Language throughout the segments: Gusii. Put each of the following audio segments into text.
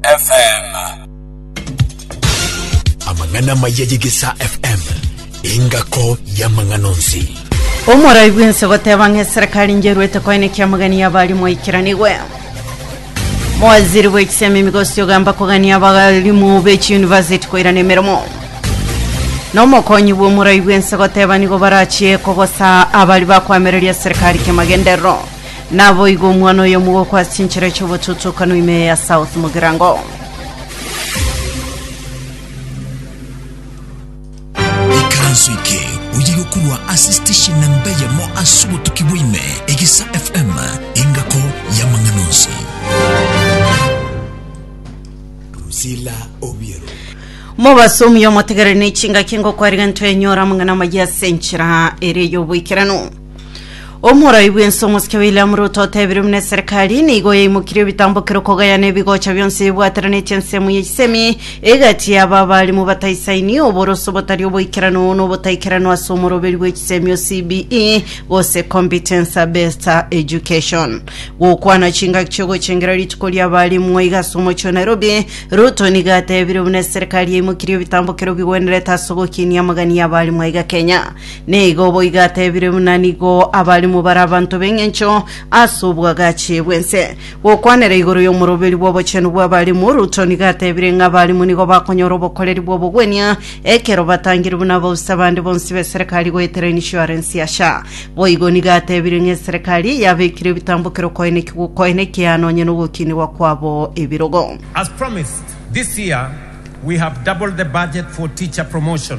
FM. amang'ana amaya y'egesa fm engako y'amang'ana onsi Omorai bwense goteba ng'a eserikali njerwete koenekia amagania y'abarimu aikiranigwe mowaziri bw'ekisemi migosi ogamba kogania abarimu b'echiyunivasiti koirana emeremo n'omokonyi bw'omorai bwense goteba nigo barachie kogosa abari bakwamereria serikali kiamagenderero Naboigo omwana oyo omogoko ase enchera chi'obototokano ime ya South Mugirango. ikaranso eke oye yokorwa ase station namba eyemo ase obotuki bwa ime egisa fm engako y'amang'ana onsi Drusilla Obiero. Mobasomi omotegereri ne chingaki ngokwariga ntoenyora amang'ana amaya ase enchera ere y'oboikeranu. Omorai bw'ense omosike William Ruto otebire buna eserekari nigo yaimokirie ebitambokero kogayana ebigocha bionsi bibwateranetie ensemo y'echisemi egati y'aba abarimu bataisaini oboroso botari oboikeranu n'obotaikeranwa ase omoroberi bw'echisemi o CBE gose Competence Based Education. Gokwana chingaki chi'ogochengera rituko ri'abarimu iga ase omochie o Nairobi, Ruto nigo atebire buna eserekari yaimokirie ebitambokero bigwenerete ase ogokinia amagani y'abarimu iga Kenya. Nigo boigo atebire buna nigo abalimu bare abanto b'engencho ase obwagachi bw'ense. Gokwanera igoro y'omoroberi bw'obochenu bw'abalimu, Ruto nigo atebire ng'a abalimu nigo bakonyora obokoreri bw'obogwenia ekero batangire buna abausi abande bonsi b'eserekari goetera insurance ya SHA. Boigo nigo atebire ng'a eserekari yabekire ebitambokero koenekigwa okoenekia nonye nogokinigwa kwabo ebirogo. As promised, this year we have doubled the budget for teacher promotion.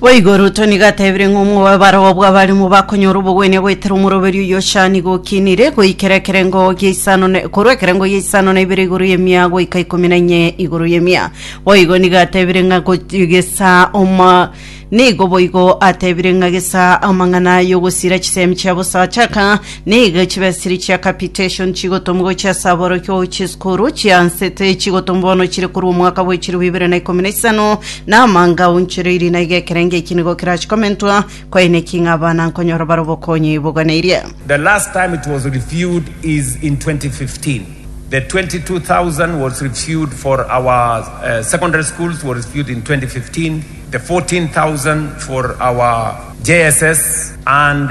Boigo Ruto nigo atebire ng'a omobaro bw'abarimo bakonyora obogwenia goetera omoroberi oyio ochaanigwe okinire goikera ekerengo gia isano na korwa ekerengo gia isano na ibere igoro y'emia goika ikomi na inye igoro y'emia. Boigo nigo atebire ng'a gochi- gesa oma nigo boigo atebire ng'a gesa amang'ana y'ogosira chisemi chia bosacha aka Nigo chibesiri chia capitation chigotomwa gochia ase aborokigwa gochia esukuru chiansete, chigotomwa bono chire korwa omwaka bwa echirobo ibere na ikomi na isano, na amanga aonchoreirie na iga ekerengo eki nigo kerache komentwa, kwaeneki ng'a abana nkonyora bare obokonyi boganeirie. The last time it was reviewed is in 2015. The 22,000 was reviewed for our uh, secondary schools was reviewed in 2015. The 14,000 for our JSS and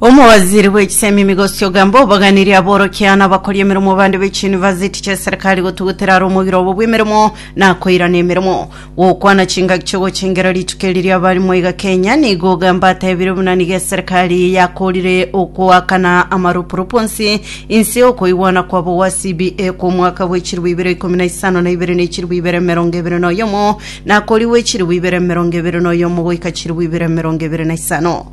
Omowaziri bwe chisemi Migosi Ogamba obaganirie aborokia na abakori emeremo bande be chiyunivasiti chi'eserikari gotugutera are omogiro obo bw'emeremo na koirana emeremo. Gokwana chingaki chi'ogochengera rituko eri ri'abarimo iga Kenya, nigo Ogamba atebire buna nigo eserikari yakorire okoakana amaropuropu onsi inse y'okoigwana kwabo gwa CBA kw'omwaka bwe chilifu ibere ikomi na isano na ibere ne chilifu ibere emerongo ebere na oyomo na korigwe chilifu ibere emerongo ebere na oyomo goika chilifu ibere emerongo ebere na isano.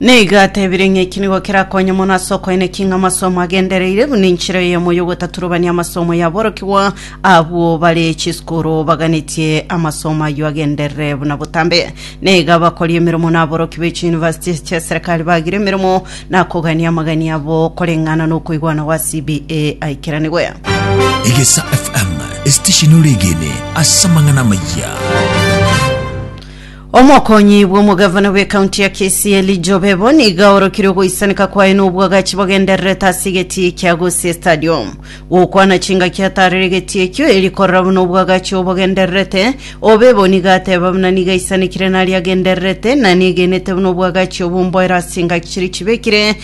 Nigo atebire ng'a eki nigo kerakonye mono ase okoeneka ing'a amasomo agendereire buna enchera eyemo y'ogotaturobania amasomo y'aborokigwa abwo bare chisukuru baganetie amasomo ayio agenderere buna botambe. Nigo abakori emeremo na aboroki be chiyunivasiti chi'eserekari bagire emeremo na kogania amagani abo koreng'ana n'okoigwana gwa CBA aikeranigwe. Egesa FM, esitesheni ore egene ase amang'ana amaya. Omokonyi bw'omogavana bw'ekaunti ya Kisii Elijah Obebo nigo aorokire ogoisaneka kwaye n'obwagachi bagendererete ase egetii kia Gusii Stadium. Gokwana chingaki ataarire egetii ekio eri korora buna obwagachi obo bogendererete, Obebo nigo ateeba buna nigo aisanekire naria agendererete na negenete buna obwagachi obwo mboero ase engaki chiria chibekire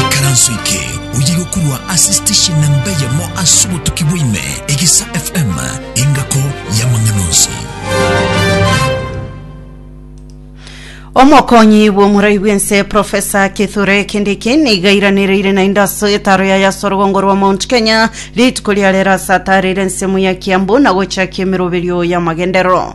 Ekaranso eke oye gokorwa ase station namba eyemo ase obotuki bwaime, Egesa FM, engako y'amang'ana onsi. omokonyi bw'omorai bw'ense profesa kithure kindiki nigairanereire naende ase etaro yaye ase orogongo rwa mount kenya rituko ria rero ase ataarire ensemo ya kiambu na gochakia emeroberio y'amagenderero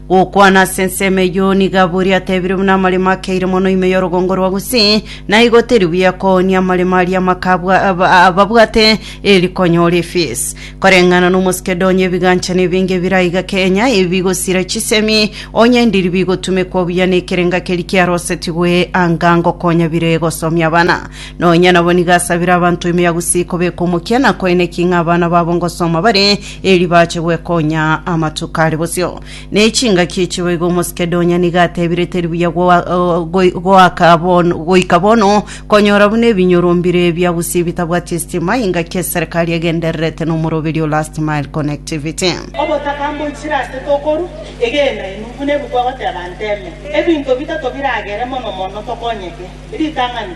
Gokwana ase ensemo eyio nigo abori atebire buna amaremo akeire mono ime y'orogongo rwa Gusii, na igo teri buya koonia amaremo aria amaka abwa aba- ababwate eri konyora efees. Koreng'ana n'Omosekedonia ebiganchano ebinge biraiga Kenya ebi bigosira chisemi, onye ndiri bigotumekwa buya nekerenga keri kiarosetigwe anga ngokonya bire gosomia abana. Nonya nabo nigo asabire abanto ime ya Gusii kobeka omokia nakoeneki ng'a abana babo ngosoma bare Eri bache gwekonya amatuko are bosio ne chingaki echigo iga Omosikedonia nigo atebire teri buya goa- o- goi- goaka bon- goika bono konyora buna ebinyoro mbire ebiagusia ebitabwati estima ingaki eserekari egendererete nomoroberi o Last Mile Connectivity. Obotaka mboichire ase tokoru egena inwe, buna ebi kwagoteba nteme. Ebinto bitato biragere mono mono tokonyeke. Ritang'ani.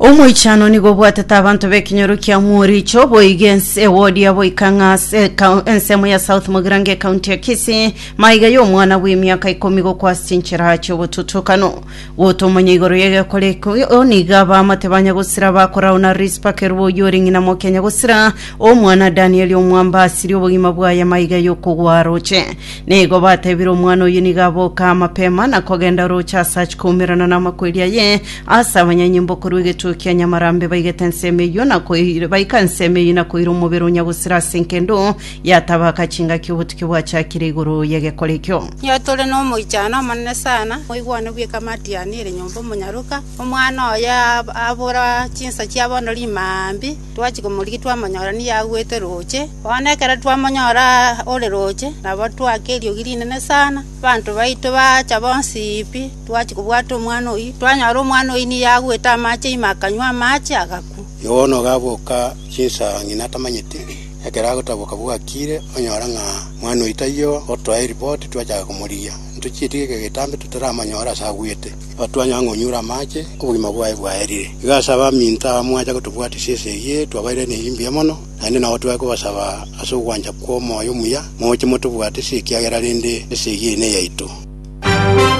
Omoichano nigo obwatete abanto b'ekenyoro kia Mworicho boiga ense ewodi yabo goika ng'a ase ekau- ensemo ya South Mogirango ekaunti ya Kisii maiga y'omwana bw'emiaka ikomi gokwa ase chinchera chi'obotutukano gotomanya igoro y'egekore ekio nigo abaamate ba Nyagusira bakorao na Rispa Kerubo oyio ore ng'ina mokia Nyagusira omwana Danieli Omwamba asiri obogima bwaye maiga y'okogwa aroche Nigo batebire, Omwana oyio nigo aboka amapema na kogenda orooche aase achikoumerana namakweri aye, aase abanyanyimbo korwa egetuo kia Nyamarambe baigete ensemo eyio na koir baika ensemo eyio na koira omobere o Nyagusira ase enkendo yatabaaka chingaki obotukia bwachakire igoro y'egekore ekio. Nigo tore nomoichano omonene sana, moigwane bw'ekamati yane ere nyomba omonyaroka, omwana oye ab abora chinsa chia bono rimambi, Twachia komorigia twamonyora nigo agwete roche. Bono ekero twamonyora ore roche, nabo twaka eriogi rinene sana, abanto baito baacha bonsi pi, twachia kobwata omwana oyio. Twanyora omwana oyio nigo agwete amache ime akanywa amache, agakwa. Yohana ogaboka chinsa ng'ina atamanyeti, ekero agotaboka bwakire, onyora ng'a omwana oyio taiyo, otoa eripoti twachaka komorigia. Intwe chietiga ekegetambe totaramonyora ase agwete. Batwanya ang'e onyure amache, obogima bwaye bwaerire. Igo ase abaminto aba mwacha gotobwatisia esegi eye twabairaine eyio mbuya mono, naende nao twaye kobasaba ase ogwancha kw'omoyo omuya, moche motobwatisie ekiagera rende esegi eye neyaito.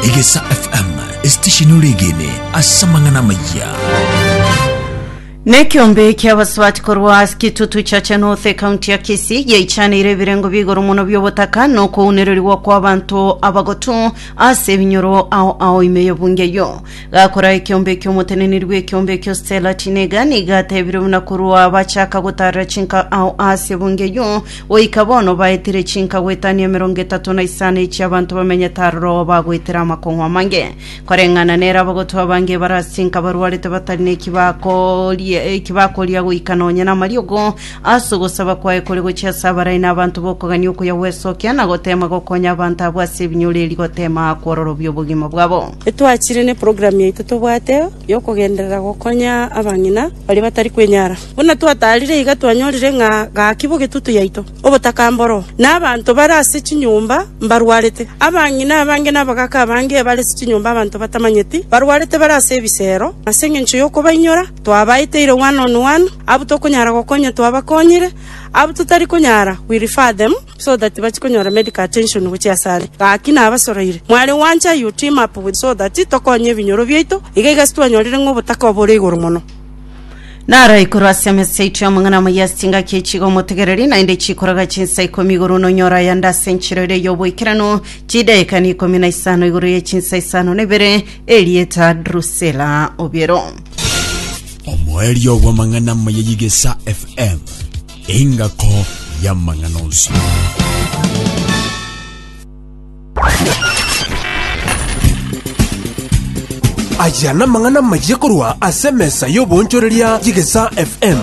Egesa FM, esitesheni oregene ase amang'ana amayia. Nekiombe kiabasubati korwa ase kitutu cha Chanoth ekaunti ya Kisii giaichaneire ebirengo bia igoro mono biobotaka na okounererigwa kwa abanto abagotu Ase ebinyoro ao ao ime y'obunge eyio, gakoraa ekeombe eki'omoteneneri bw'ekeombe ekio stela tinega, nigo ateebire buna korwa bachaaka gotaarera chinka ao aase ebunge eyio, goika bono baetire chinka goetania emerongo etato na isano echi abanto bamenyete aroro bagoetera amakong'u amange, koreng'ana nere abagotwa abange ebarasinka barwarete batari neki bakoria eki bakoria goika nonya namariogo Ase ogosaba kwaye kore gochia ase abarai na abanto b'okogania okuya gwesokia, na goteema gokonya abanto abwo ase ebinyoro erio goteema kwororobia obogima bwabo. Etwachire neprogramu yaito tobwate yokogenderera gokonya abang'ina baria batari kwenyara. Buna twataarire iga twanyorire ng'a gaki bogetutu yaito, obotakamba oro, na abanto bare ase chinyomba mbarwarete. Abang'ina abange na abagaaka abange bare ase chinyomba abanto batamanyeti barwarete bare ase ebisero, ase engencho yokobainyora. Twabaeete irogwano on one, abwo tokonyara gokonya twabakonyire, abwo totari konyara we refer them so that bache konyora medical attention gochia asare. Gaki nabasoroire, mware gwancha you team up with so that tokonye ebinyoro biaito, iga iga ase twanyorire ng'a obotaka obore igoro mono. Naro ekorwa ase emesa yaito y'amang'ana amayia ase chingaki echi iga omotegereri, naende chikoroga chinsa ikomi igoro buna onyora ayande ase enchero ere y'oboikeranu, chidaeka na ikomi na isano igoro ye chinsa isano na ibere, erieta Drusela obiero. Omoerio bw'amang'ana amaya y'Igesa FM, engako y'amang'ana onsi. aya namang'ana mayiye korwa ase emesa y'oboonchoreria y'igesa fm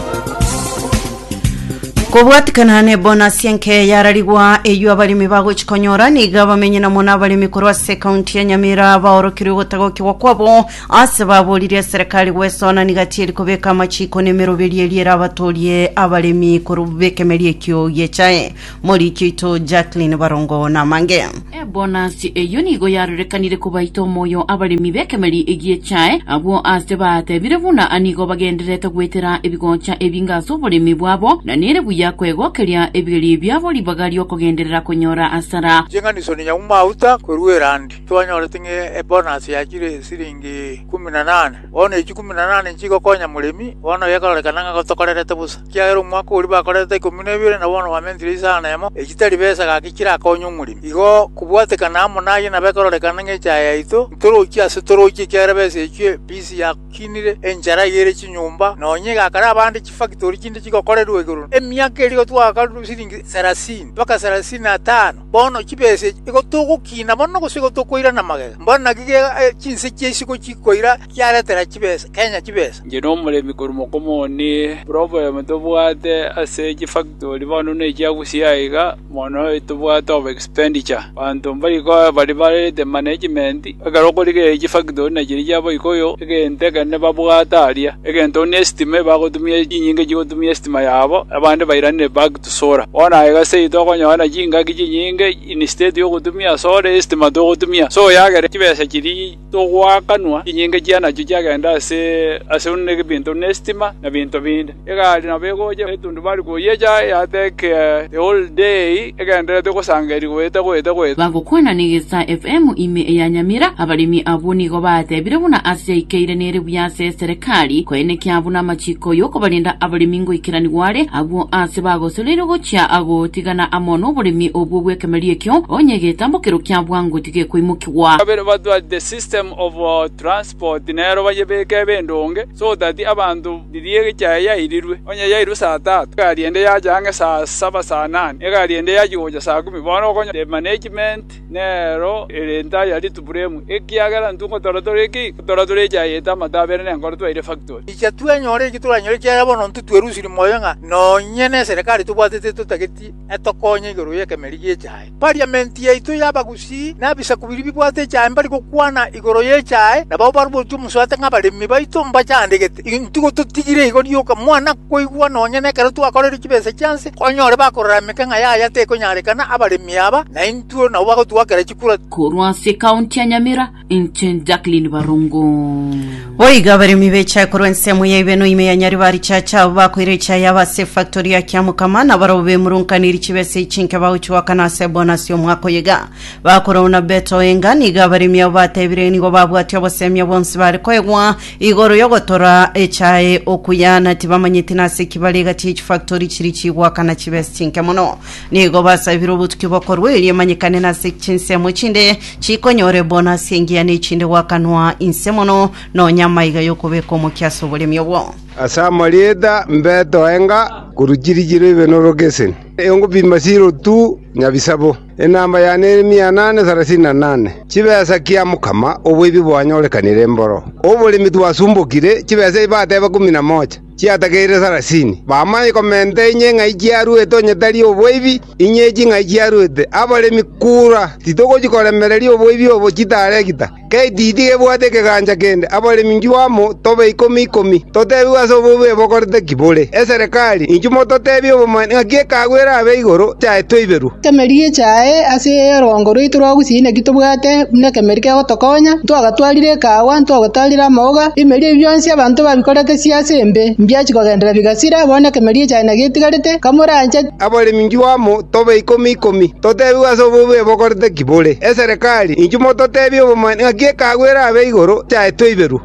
kobwatikana ne bonasi enke yararigwa eywo abarimi bagochikonyora niga bamenye namo n'abarimi korwa ase ekaunti ya nyamira baorokirwe gotagokigwa kwabo Ase baboririe eserekari gwesona niga tieri kobeka amachiko nemeroberio eria erabatorie abaremi korwa b'ekemeria ekio gi'echae. Moriki oito Jacqueline Barongo namange. Ebonasi eyio nigo yarorekanire kobaita omoyo abaremi b'ekemeri egi'echae, abwo aase baatebire buna nigo bagendererete goetera ebigocha ebinge ase oboremi bwabo, na nere buya kwegokeria ebigerio biabo ribaga ri'okogenderera konyora asara. Ching'aniso ni nyauma auta koruera andi. Twanyorete ng'a ebonasi yachire esiringi ikumu na nane. Bono echi ikumu na nane nchigokonya moremi, bono gekoororekana ng'a gotokorerete bosa, ekiagera omwaka oria bakorerete ikomi na ebere, na bono bamentire isano emo, echi tari besa gaki chirakonye omoremi. Igo kobwatekana amo naye nabo ekororekana ng'a echaye yaito, ntorochi ase torochi, ekiagera besa echio ebisi yakinire enchara igere chinyomba, nonya egakara abande chifakitori chinde chigokorerwa igoro emiaka eria gotwaka siringi sarasini mpaka sarasini na tano. Bono chibesa echi nigo togokina mono gose nigo tokoirana magega? Mbwenu naki gega chinse chia isiko chikoira chiaretera chibesa, Kenya chibesa. Inche nomoremi korwa mokomo one, problem tobwate ase chifactory bono buna echi agusia aiga, mono tobwate over expenditure. Abanto mbari koba bari barete management, ekero okorigereria chifactory buna chiria chia boika oyo, egento ekenene babwate aria. Egento buna estima ebagotumia chinyinga chigotumia estima yabo, abande bairanire back. tosoora. Bono aye gose intwe okonyora chingaki chinyinge, instead y'ogotumia ase ore estima togotumia ase oyagere, chibesa chiria togoakanwa chinyinge chia nachio chiagende ase ase buna ebinto buna estima na binto binde. Egari nabo egocha etundubari koyecha yatake the whole day egendererete gosangeria goeta goeta goeta. Bagokwana negesa FM ime eya Nyamira, abaremi abwo nigo batebire buna ase yaikeire nere buya ase eserekari koenekia buna amachiko yokobarenda abaremi, ngoikeranigwa are, abwo aase bagosoreirwe gochia gotigana amo noboremi obwo bw'ekemerio ekio, onye egetambo kero kia bwango tigekoimokigwa. Kabere batwate system of transport nero bayebeke bendonge so that abanto riria egecha eye yairirwe onye yairwe saa tatu egari ende yacha ang'e saa saba saa nane egari ende yachi gocha saa kumi bono okonyora the management nero ere entari ya rituburemu, ekiagera intwe ngotora tore ki? Ngotora tore echaye ete amato abere nenkoro twaire efaktori. Inche twenyore eki toranyore, ekiagera bono intwe twerusirie moyo ng'a nonye n'eserekari tobwatete etotageti etokonye igoro y'ekemeri gi'echaye. Pariamenti yaito y'abagusii na ebisaku biria bibwate echaye mbari gokwana igoro y'echaye, nabao barubotie omosuate ng'abaremi baito mbachandegete. Intwe igo totigire igo rioka, mwana! Koigwa nonya nekero twakorire chibesa chia nse, onyore bakorora emeke ng'a yaya tekonyarekana abaremi aba, na intwe nabo bagotwakera chikura. Korwa ase ekaunti ya Nyamira, inche Jacqueline Barongo. Boigo abaremi bechae korwa ensemo ya Ibeno ime ya Nyaribarichacha abwo bakoire echae yabo ase efactori ya Kiamokama na barabwo bemurunkaniri chibesa echi inke bagochia goakana ase ebonasi y'omwaka oyo iga. Bakora Onabeto Oenga nigo abaremi abo batebirie nigo babwatia obosemia bwonsi bare koegwa Igoro y'ogotora echae okuya na tibamanyeti nase ki bare egati ye chifactori chiri chigwaka na chibesi chinke mono. Nigo basabire obotuki bokorwa erio emanyekane nase chinsemo echinde chikonyora ebonasi engiya na echinde gwakanwa inse mono nonya amaiga y'okobeka omokia ase oboremi obwo. Ase amarieta mbetoe nga koru chiri chiro ibe norogeseni, eyongo pima siro tu nyabisabo. Enamba yane ere mianane sarasini na nane, chibesa kia mokama oboibi bwanyorekanire mboro oboremi twasumbokire, chibesa echi bateba ikomi na mocha, chiatageire sarasini. Bamanye komenta inye ng'ai chiaruete onye tari oboibi, inye echi ng'ai chiaruete abaremi kura, titogochi koremereria oboibi obo chitaregita. Getiti gebwate ekegancha kende, abaremi inchuo amo tobe ikomi ikomi, totebigwe ase obobe bokorete ki bore. Eserekari, inchuo mototebie obomani ng'aki ekeago erabe igoro yaye toiberwe. Emeri echae ase orwango rwaito rwa gusii inaki tobwate buna ekemeri kegotokonya, ntwagatwarire ekeago, ntwagotarire amauga, ebimeri ebi bionsi abanto babikorete chiase embe, mbiachi kogenderera bigasira, bono ekemeri echae nagetigarete, kamorancheti. Abaremi inchuo amo tobe ikomi ikomi, totebigwe ase obobe bokorete ki bore. Eserekari, inchuo mototebie obomanyi ng'aki ekeago erabe igoro chiaetwe iberwe.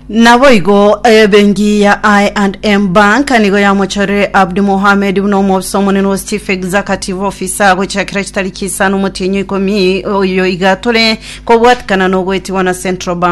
Naboigo ebenki ya I&M Bank nigo yamochorire Abdi Mohamed buna omobisa omonene o Chief Executive Officer gochakera chitariki isano motienyi ikomi oyo iga tore kobwatikana nogoetigwa na Central Bank